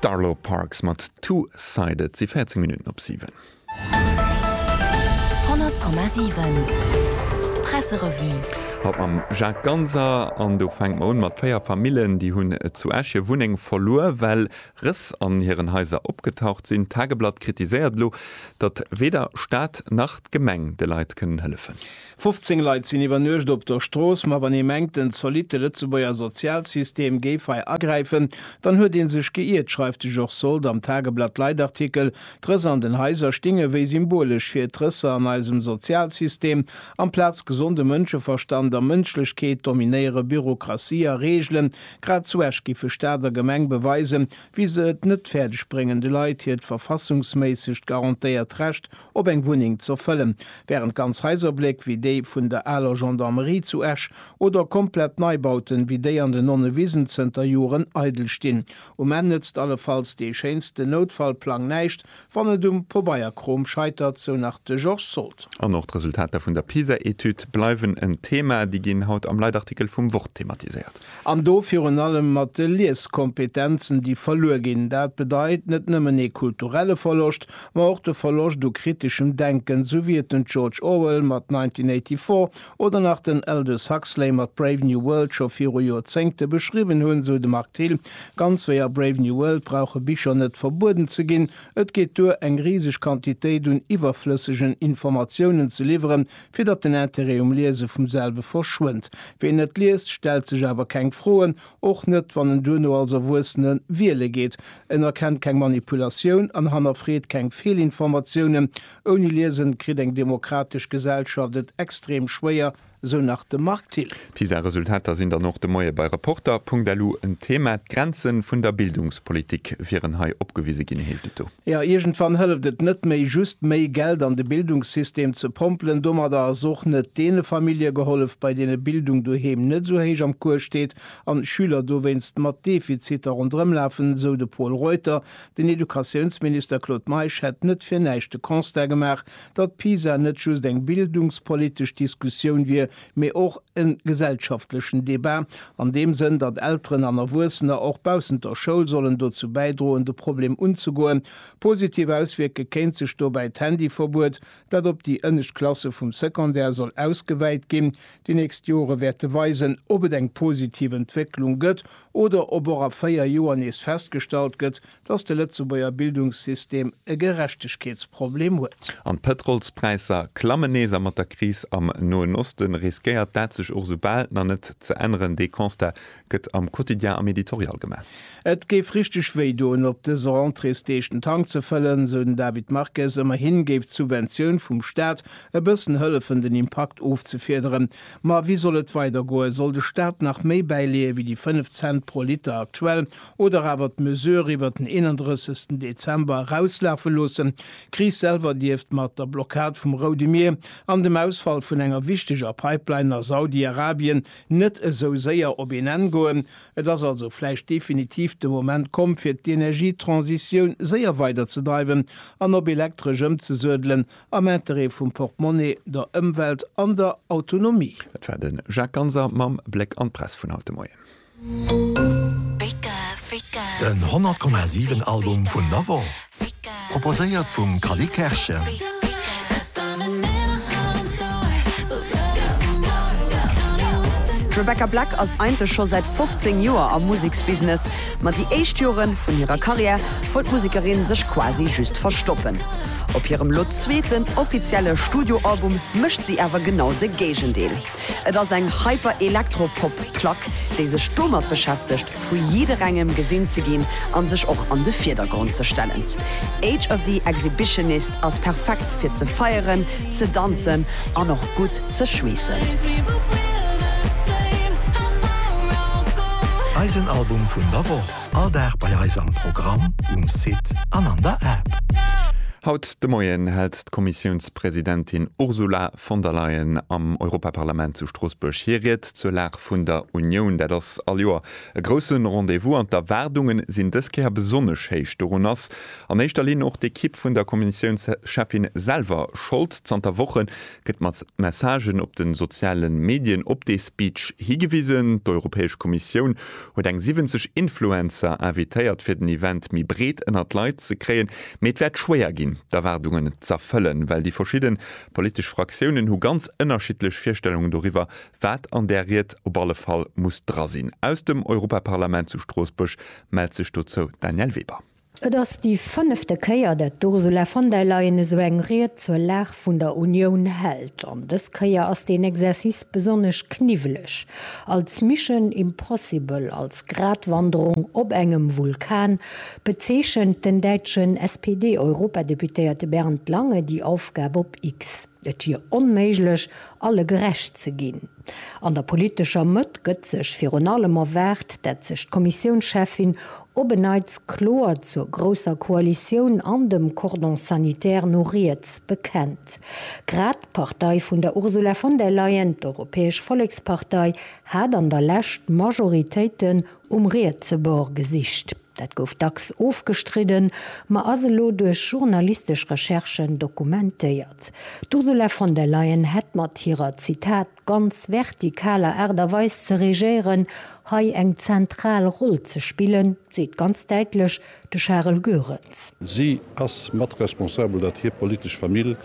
D'Arlo Parks mat Two Sided. Et si 14 Minutten op 7. 100,7 Presserevue. Haut mam Jacques Ganser. An do fänkt mer un mat 4 Famillen, déi hunn zu Esch hir Wunneng verluer, well Rëss an hiren Haiser opgetaucht sinn. D'Tageblatt kritiséiert elo, datt weder Staat nach d'Gemeng de Leit kënnen hëllefen. 15 Leit sinn iwwer Nuecht op der Strooss, ma wann ee mengt, den zolitte Lëtzebuerger Sozialsystem géif hei agräifen, dann huet ee sech geiert, schreift de Georges Sold am Tageblatt Leitartikel. D'Rëss an den Haiser stinge wéi symbolesch fir d'Rësser an eisem Sozialsystem. Amplaz gesonde Mënscheverstand a Mënschlechkeet dominéiere Bürokratie a Reegelen. Grad zu Esch giffe Staat a Gemeng beweisen, wéi se et net fäerdeg bréngen, de Leit hiert verfassungsméissegt garantéiert Recht op eng Wunneng ze fëllen, wärend ganz Haiserbléck wéi déi vun der aler Gendarmerie zu Esch oder komplett Neibauten wéi déi an den Nonnewisen zënter Joren eidel stinn. Um Enn nëtzt allefalls dee schéinsten Noutfallplang näischt, wann et um Pobeierkrom scheitert, sou nach de Georges Sold. An och d'Resultater vun der PISA-Etüd bleiwen en Thema. Déi ginn haut am Leitartikel vum Wort thematiséiert. An do virun allem mat de Lieskompetenzen, déi verluer ginn. Dat bedeit net nëmmen ee kulturelle Verloscht, ma och de Verloscht u kriteschem Denken, esou wéi et den George Orwell mat 1984 oder nach den Aldous Huxley mat Brave New World scho viru Joerzéngte beschriwwen hunn, esou de Marc Thill. Ganz wéi a Brave New World brauche Bicher net verbueden ze ginn. Et geet duer, eng riseg Quantitéit un iwwerflëssegen Informatiounen ze liwweren, fir datt den Interêt um Liese vum selwe verschwënnt. Ween net liest, stellt sech awer keng Froen, och net wann en duerno als Erwuessene wiele geet. En erkennt keng Manipulatioun an hannerfreet keng Feelinformatiounen. Ouni Liesen kritt eng demokratesch Gesellschaft et extrem schwéier, sou nach de Marc Thill. D'PISA-Resultater sinn dann och de Moie bei Reporter.lu en Thema. D'Grenze vun der Bildungspolitik wieren hei opgewise ginn, heescht et do. Jo, iergendwann hëlleft et net méi, just méi Geld an de Bildungssystem ze pompelen. Domadder ass och net deene Famillje gehollef, bei deene Bildung doheem net esou héich am Kuer steet an d'Schüler dowéinst mat Defiziter ronderëm lafen, esou de Pol Reuter. Den Educatiounsminister Claude Meisch hätt net fir näischt de Constat gemaach, datt PISA net just eng bildungspolitesch Diskussioun wier, mee och e gesellschaftlechen Debat, an deem Sënn, datt Elteren an Erwuessener och baussent der Schoul sollen dozou bäidroen, de Problem unzegoen. Positiv auswierke kéint sech dobäi d'Handyverbuet, dat op déi ënnescht Klasse vum Secondaire soll ausgewäit ginn. Déi nächst Jore wäerte weisen, ob et eng positiv Entwécklung gëtt oder ob och a véier Joer nees festgestallt gëtt, dass de Lëtzebuerger Bildungssystem e Gerechtegkeetsproblem huet. An d'Pëtrolspräisser klammen nees, a mat der Kris am Noen Oste riskéiert dat sech och esou bal nach net ze änneren. Dee Constat gëtt am Quotidien am Editorial gemaach. Et géif richteg wéi doen, op dëse Rentréesdeeg den Tank ze fëllen, esou den David Marques. Ëmmerhi géif d'Subventioun vum Staat e bëssen hëllefen, den Impakt ofzefiederen. Ma wéi soll et weider goen? Soll de Staat nach méi bäileeë wéi déi 5 Cent pro Liter aktuell oder awer d'Mesure iwwert den 31 Dezember erauslafe loossen? D'Kris selwer dierft mat der Blockad vum Roude Mier an dem Ausfall vun enger wichteger Pipeline a Saudi-Arabien net esou séier op een Enn goen. Et ass also vläicht definitiv de Moment komm fir d'Energietransitioun séier weiderzedreiwen an op elektresch ëmzesuedelen, Am Interêt vum Portemonnaie, der Ëmwelt an der Autonomie. Dat war de Jacques Ganser mam Bléck an d'Press vun haut de Moien. Den 100 Komma 7 Album vun der Woch, proposéiert vum Cally Kerschen. D'Rebecca Black ass eigentlech scho säit 15 Joer am Museksbusiness. Ma déi éischt Jore vun hirer Karriär wollt d'Musekerin sech quasi just verstoppen. Op hirem lo zweeten offizielle Studioalbum mécht si awer genau de Géigendeel. Et ass eng Hyper-Elektro-Pop-Plack, déi sech domat beschäftegt, vu jidderengem gesinn ze ginn a sech och an de Virdergrond ze stellen. Age of the Exhibitionist ass perfekt fir ze feieren, Ze danzen an och gutt ze schweessen. Eisen Album vun der Woch, all Dag bei eis am Programm, um Site an an der App. Haut de Moien hält d'Kommissiounspresidentin Ursula von der Leyen am Europaparlament zu Stroossbuerg hir Ried zur Lag vun der Unioun. Dat ass all Joer e grousse Rendez-vous an d'Erwaardunge sinn dës Kéier besonnesch héich. Dorun ass An éischter Linn och d'Ekipp vun der Kommissiounscheffin selwer Schold. Zanter Woche gëtt mat Messagen op de soziale Medien op dee Speech higewisen. D'Europäesch Kommissioun huet eng 70 Influencer invitéiert fir den Event méi breet ënnert d'Leit ze kréien. Mee et wäert schwéier ginn d'Erwaardungen z'erfëllen, well déi verschidde politesch Fraktiounen hu ganz ënnerschiddlech Virstellungen doriwwer, wat an där Ried op alle Fall muss dra sinn. Aus dem Europaparlament zu Stroossbuerg mellt sech dozou d'Danièle Weber. Et ass déi fënnefte Kéier, dat d'Ursula von der Leyen esou eng Ried zur Lag vun der Unioun hält. An dës Kéier ass deen Exercice besonnesch kniwweleg. Als Mission impossible, als Gratwanderung op engem Vulkan, bezeechent den däitschen SPD-Europadeputéierte Bernd Lange déi Aufgab op X. Et wier onméiglech, alle gerecht ze ginn. An der politescher Mëtt gëtt sech virun allem erwaart, dat sech d'Kommissiounscheffin op en Neits kloer zur grousser Koalitioun an dem Cordon sanitaire no riets bekennt. Grad d'Partei vun der Ursula von der Leyen, d'Europäesch Vollekspartei, hat an der Lescht Majoritéiten Um rietse Bord gesicht. Dat gouf dacks ofgestridden, ma ass elo duerch journalistesch Recherchen dokumentéiert. D'Ursula von der Leyen hätt mat hirer, Zitat, ganz vertikaler Aart a Weis ze regéieren, hei eng zentral Roll ze spillen, seet ganz däitlech, De Charel Goerens. Si ass mat responsabel, datt hir politesch Famill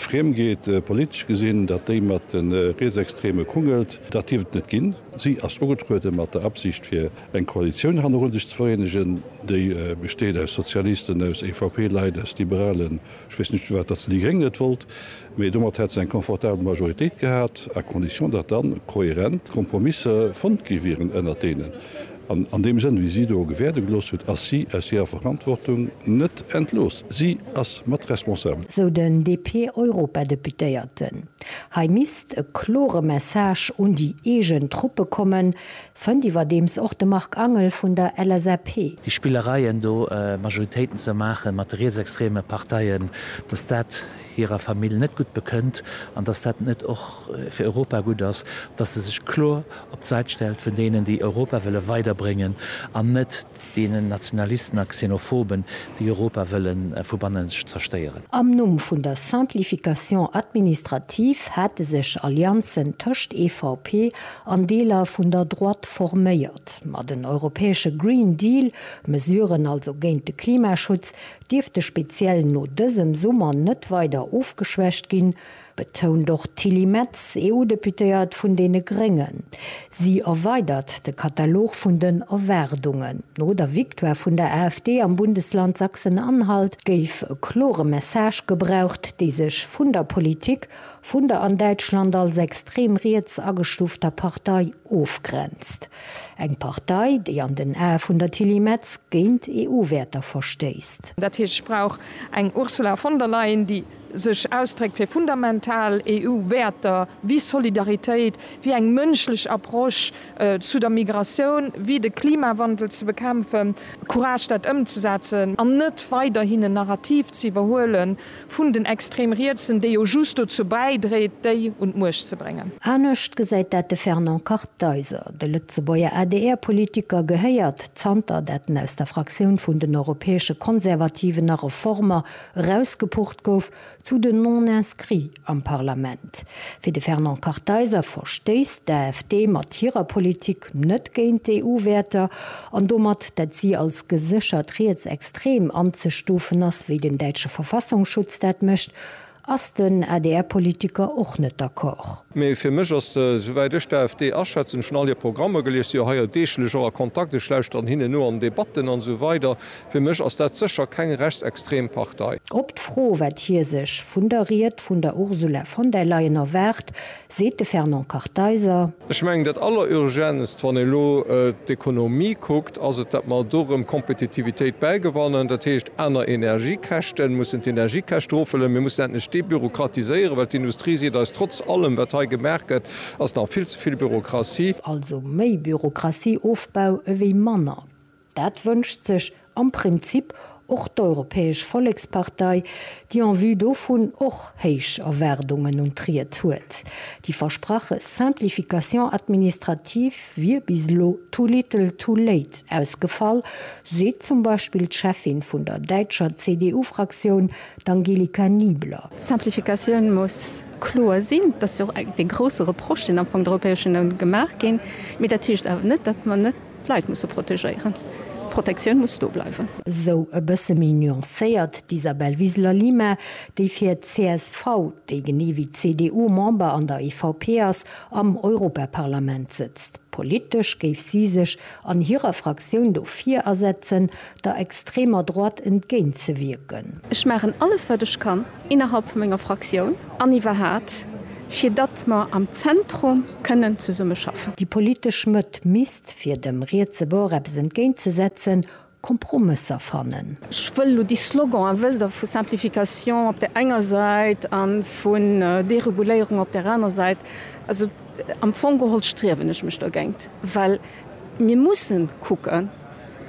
friem geet, politesch gesinn, datt déi mat de Rietsextreme kungelt. Dat dierf et net ginn. Si ass ugetruede mat der Absicht, fir eng Koalitioun hannerun sech ze vereenegen, déi besteet aus Sozialisten, aus EVP-Leit, aus Liberalen, ech weess net firwat datt se déi Gréng net wollt. Mee domat hätt se eng confortabel Majoritéit gehat, à condition datt dann kohärent Kompromisse fonnt gi wieren ënnert deenen. An an deem Sënn, wéi si do gewäerde gelooss huet, ass si aus hirer Verantwortung net entlooss. Si ass mat responsabel. Sou den DP-Europadeputéierten. Hei misst e klore Message un déi eegen Truppe kommen, Fënnt iwwerdeems och de Marc Angel vun der LSAP. Déi Spillereien do Majoritéiten ze maache mat de rietsextreme Parteien, datt dat hirer Famill net gutt bekënnt an datt dat net och fir Europa gutt ass, datt se sech kloer op d'Säit stellt vun deenen, déi Europa wëlle weiderbréngen an net, Deenen Nationalisten a Xenophoben, déi Europa wëlle vu bannen zerstéieren. Am Numm vun der Simplification administrative hate sech Allianzen tëscht EVP an Deeler vun der Droite forméiert. Ma den europäesche Green Deal, Mesuren also géint de Klimaschutz, dierfte speziell no dësem Summer net weider ofgeschwächt ginn. betount och d'Tilly Metz, EU-Deputéiert vun deene Gréngen. Si erweidert de Katalog vun den Erwaardungen. No der Victoire vun der AfD am Bundesland Sachsen-Anhalt géif e klore Message gebraucht, dee sech vun der Politik vun der an Däitschland als extrem riets agestufter Partei ofgrenzt. Eng Partei, déi an den Ae vun der Tilly Metz géint EU-Wäerter verstéisst. Dat heescht, ech brauch eng Ursula von der Leyen, déi sech ausdréckt fir fundamental EU-Wäerter wéi Solidaritéit, wéi eng mënschlech Approche zu der Migratioun, wéi de Klimawandel ze bekämpfen, Courage dat ëmzesetzen an net weiderhin en Narrativ ze iwwerhuele vun den Extrem-Rietsen, dee jo just dozou bäidréit, déi un d'Muecht ze bréngen. Anescht gesäit dat de Fernand Kartheiser. De Lëtzebuerger ADR-Politiker gehéiert, zanter dat en aus der Fraktioun vun den Europäesche Konservativen a Reformer Erausgepucht gouf zu den Non-Inscrits am Parlament. Fir de Fernand Kartheiser verstéisst d'AfD mat hirer Politik net géint d'EU-Wäerter an domat, dat si als geséchert rietsextrem anzestufen ass, wéi den däitsche Verfassungsschutz dat mécht, ass den ADR-Politiker och net d'accord. Mee fir mech ass, souwäit ech d'AfD aschätzen, ech hunn all hir Programmer gelies, si jo hei deeglech och a Kontakt, ech lauschteren hinnen no an Debatten an esou weider, fir mech ass dat sécher keng rechtsextrem Partei. Op d'Fro, wat hie sech vun der Ried vun der Ursula von der Leyen erwaart, seet de Fernand Kartheiser. Ech mengen dat Allerurgenst, wann ee elo d'Ekonomie kuckt, ass et, datt mer do erëm Kompetitivitéit bäigewannen. Dat heescht, aner Energiekäschten, mir mussen d'Energiekäscht erofhuelen, mir mussen endlech debürokratiséieren, well d'Industrie seet eis, trotz allem wat hei gemaach gëtt, ass nach vill ze vill Bürokratie. Also méi Bürokratie-Ofbau ewéi manner, dat wënscht sech am Prinzip Och d'Europäesch Vollekspartei, déi en vue dovun och héich Erwaardungen un d'Ried huet. Déi versprache Simplification administrative wier bis elo too little too late ausgefall, seet zum Beispill d'Cheffin vun der däitscher CDU-Fraktioun, d'Angelika Niebler. D'Simplificatioun muss kloer sinn, dat ass jo och dee grousse Reproche, deen am Fong der Europäescher Unioun gemaach ginn. Mee dat heescht awer net, datt mer net D'Leit muss se protegéieren. D'Protektioun muss do bleiwen. Esou e bësse méi nuancéiert d'Isabel Wiseler-Lima, déi fir csv, déi genee wéi d'CDU Member an der EVP ass, am Europaparlament sëtzt. Politesch géif si sech an hirer Fraktioun dofir asetzen, der extremer Droite entgéintzewierken. Ech maachen alles wat ech kann innerhalb vu menger Fraktioun an iwwerhaat fir datt mer am Zentrum kënnen zesumme schaffen. Déi politesch Mëtt misst, fir dem rietse Bord eppes entgéintzesetzen, Kompromësser fannen. Ech wëll elo déi Slogan, a wësst, vu Simplification op där enger Säit a vu Dereguléierung op där aner Säit, also am Fong geholl striewen ech mech dogéint, well mir musse kucken,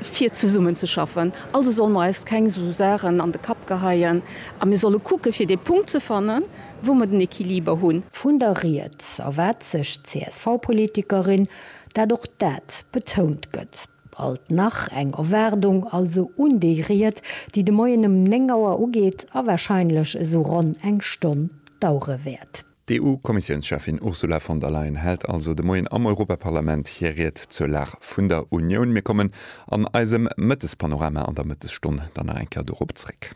fir zesummenzeschaffen. Also solle mer eis keng esou Saachen an de Kapp geheien a mir solle kucke fir dee Punkt ze fannen, wou mer den Equiliber hunn. Vun der Rieds erwaart sech d'CSV-Politikerin, dat och dat betount gëtt. Alt nach eng Erwaardung also un déi Ried, déi de Moien ëm 9 Auer ugeet a warscheinlech esou ronn eng Stonn dauere wäert. D'EU-Kommissiounscheffin Ursula von der Leyen hält also de Moien am Europaparlament hir Ried zur Lag vun der Unioun. Mir kommen an eisem Mëttespanorama an der Mëttesstonn dann nach eng Kéier dorop zréck.